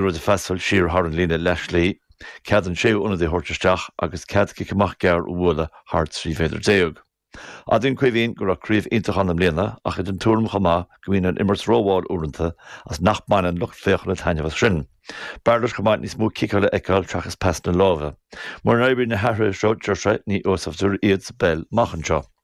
rud a phassáil siar thar an líne leathshlí, cead an séú ionadaí a thabhairt isteach agus cead cic amach gearr a bhualadh thar 13 mhéadar. Admhaíonn Caoimhín go raibh craobh iontach ann i mbliana ach é den tuairim chomh maith go mbíonn an imirt rómhall uaireanta agus nach mbaineann lucht féachana taitneamh as sin. B'fhearr leis chomh maith níos mó ciceála a fheiceáil seachas pasanna láimhe. Mura n-oireann na hathruithe seo, deir sé, ní úsáidfear iad sa bpeil amach anseo.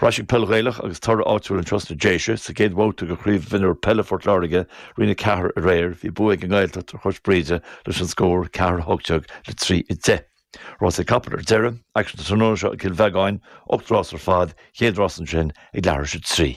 Ar ais chuig peil Ghaelach agus toradh áitiúil anois sna Déise sa gcéad bhabhta de Chraobh Mhionúir Peile Phort Láirge, Roinn 4, aréir. Bhí bua ag an nGaeltacht ar Chois Bhríde leis an scór ceathair a hocht déag le trí a deich. Rásaí capall ar deireadh. Aicsean tráthnóna seo i gCill Bheagáin, ocht rás ar fad, chéad rás ansin ag leathuair tar éis a trí.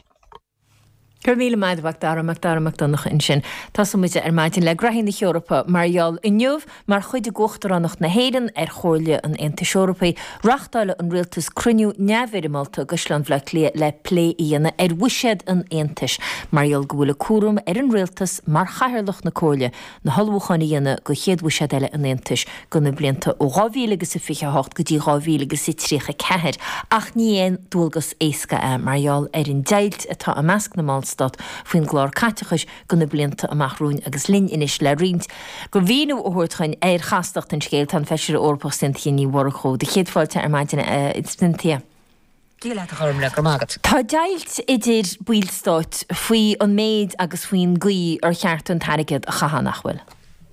Go raibh míle maith agat, Macdara, Macdara Mac Donncha ansin. Tosóidh muid ar maidin le gnóthaí na hEorpa mar gheall inniu, mar chuid d'Uachtaránacht na hÉireann ar Chomhairle an Aontais Eorpaí, reáchtálfaidh an Rialtas cruinniú neamhfhoirmeálta i gCaisleán Bhaile Átha Cliath le plé a dhéanamh ar bhuiséad an Aontais, mar gheall go bhfuil an cúram ar an Rialtas mar Chathaoirleach na Comhairle, na hullmhúcháin a dhéanamh don chéad bhuiséad eile an Aontais do na blianta ó 2028 go dtí 2034, ach ní aon dualgas éasca é mar gheall ar an deighilt atá i measc na mBallstát faoin gclár caiteachais do na blianta amach romhainn agus linn anois le roinnt de mhíniú a thabhairt dúinn ar chastacht an scéil. Tá an Feisire Eorpach Cynthia Ní Mhurchú, do chéad fáilte ar maidin a Cynthia. Dia leat a Ghormlaith go raibh maith agat. Tá deighilt idir baill stáit faoi an méid agus faoin gcaoi ar cheart an t-airgead a chaitheamh, nach bhfuil?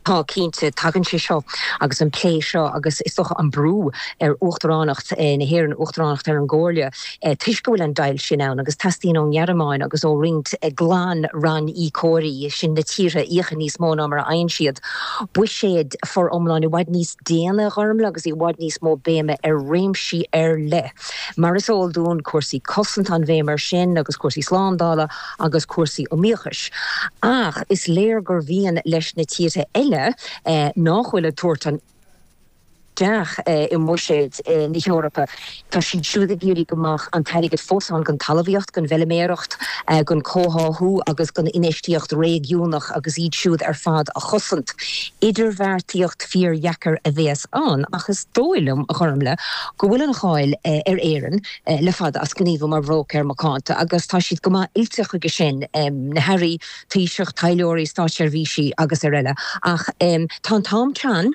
Tá, cinnte. Tagann sé seo agus an plé seo agus, is dócha, an brú ar Uachtaránacht na hÉireann, Uachtaránacht ar an gComhairle toisc go bhfuil an deighilt sin ann agus teastaíonn ón nGearmáin agus ó roinnt glan-ranníocóirí, sin na tíortha a íocann níos mó ná mar a fhaigheann siad, buiséad foriomlán i bhfad níos. déine a Ghormlaith agus i bhfad níos mó béime ar réimsí ar leith. Mar is eol dúinn, cúrsaí cosanta an bhéim air sin agus cúrsaí slándála agus cúrsaí iomaíochais. Ach is léir gur mhian leis na tíortha eile nach bhfuil ag tabhairt an isteach i mbuiséad na hEorpa, Tá siad siúd ag iarraidh go mbeadh an t-airgead fós ann don talamhaíocht, don bhfeiliméaracht, don chomhtháthú agus don infheistíocht réigiúnach agus iad siúd ar fad a chosaint. Idirbheartaíocht fíordheacair a bhéas ann ach is dóigh liom, a Ghormlaith, go bhfuil an cháil ar Éirinn le fada as gníomhú mar bhróicéir macánta agus tá siad go maith oilte chuige sin, na hAirí, Taoiseach, Taidhleoirí, Státseirbhísí agus ar eile. Ach tá an t-am teann.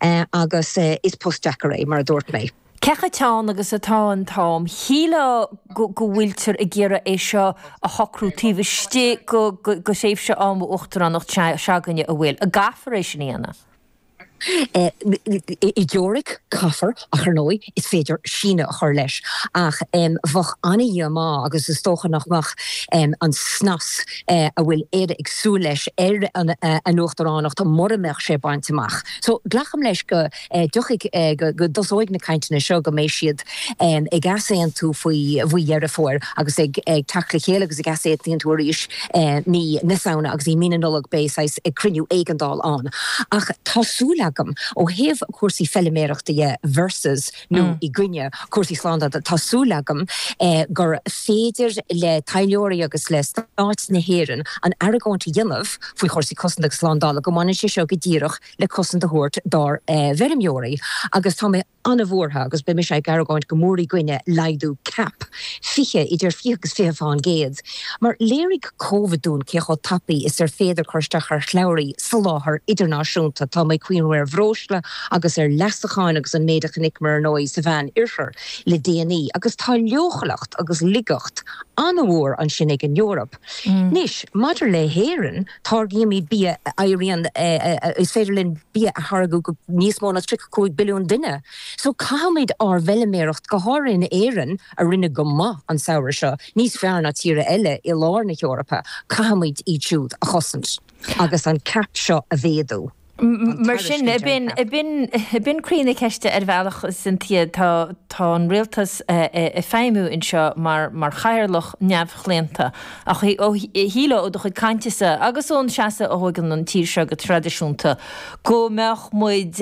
Agus is post deacair é, mar a dúirt mé. Cé chomh teann agus atá an t-am, shílfeá go bhfuiltear ag iarraidh é seo a shocrú taobh istigh de thréimhse ama uachtaránacht s'againne, an bhfuil. An gcaithfear é sin a dhéanamh? I dteoiric, caithfear. Ach ar ndóigh, is féidir síneadh a chur leis, ach bheadh an-dhíomá agus is dócha nach mbeadh an snas a bhfuil Éire ag súil leis ar an uachtaránacht mura mbeadh sé bainte amach. So, glacaim leis go dtiocfaidh, go dtosóidh na cainteanna seo, go mbeidh siad ag easaontú faoi Dheireadh Fómhair agus ag teacht le chéile agus ag easaontú arís. i mí na Samhna agus i mí na Nollag beidh saghas cruinniú éigeandála ann ach tá súil agam ó thaobh cúrsaí feiliméarachta dhe versus nó i gcoinne cúrsaí slándála tá súil agam gur féidir le taidhleoirí agus le Stát na hÉireann an argóint a dhéanamh faoi chúrsaí cosanta agus slándála go mbaineann sé seo go díreach le cosaint a thabhairt dár bhfeirmeoirí agus tá mé an-bhuartha agus beidh mise ag argóint go mór i gcoinne laghdú cap 20, idir 20 agus 20 faoin gcéad, mar léirigh Covid dúinn cé chomh tapaidh is ar féidir cur isteach ar shlabhraí soláthair idirnáisiúnta. Tá mé ag cuimhniú ar bhreosla agus ar leasacháin agus an méid a chonaiceamar ar ndóigh sa Mheán Oirthear le déanaí agus tá leochaileacht agus laigeacht an-mhór ansin ag an Eoraip. Anois, maidir le hÉirinn, Táirgímid bia a éiríonn, is féidir linn bia a tháirgeadh go níos mó ná 35 billiún duine, so caithfimid ár bhfeiliméaracht, go háirithe in Éirinn a rinne go maith an samhradh seo, níos fearr ná tíre eile i lár na hEorpa, caithfimid iad siúd a chosaint agus an CAP seo a mhéadú. Mar sin, b'in croí na ceiste ar bhealach, sa mhéid is atá an rialtas ag feidhmiú anseo mar chathaoirleach neamhchlaonta. Ach shílfeá ó do chuid cainte-sa agus ón seasamh a thógann an tír seo go traidisiúnta go mbeadh muid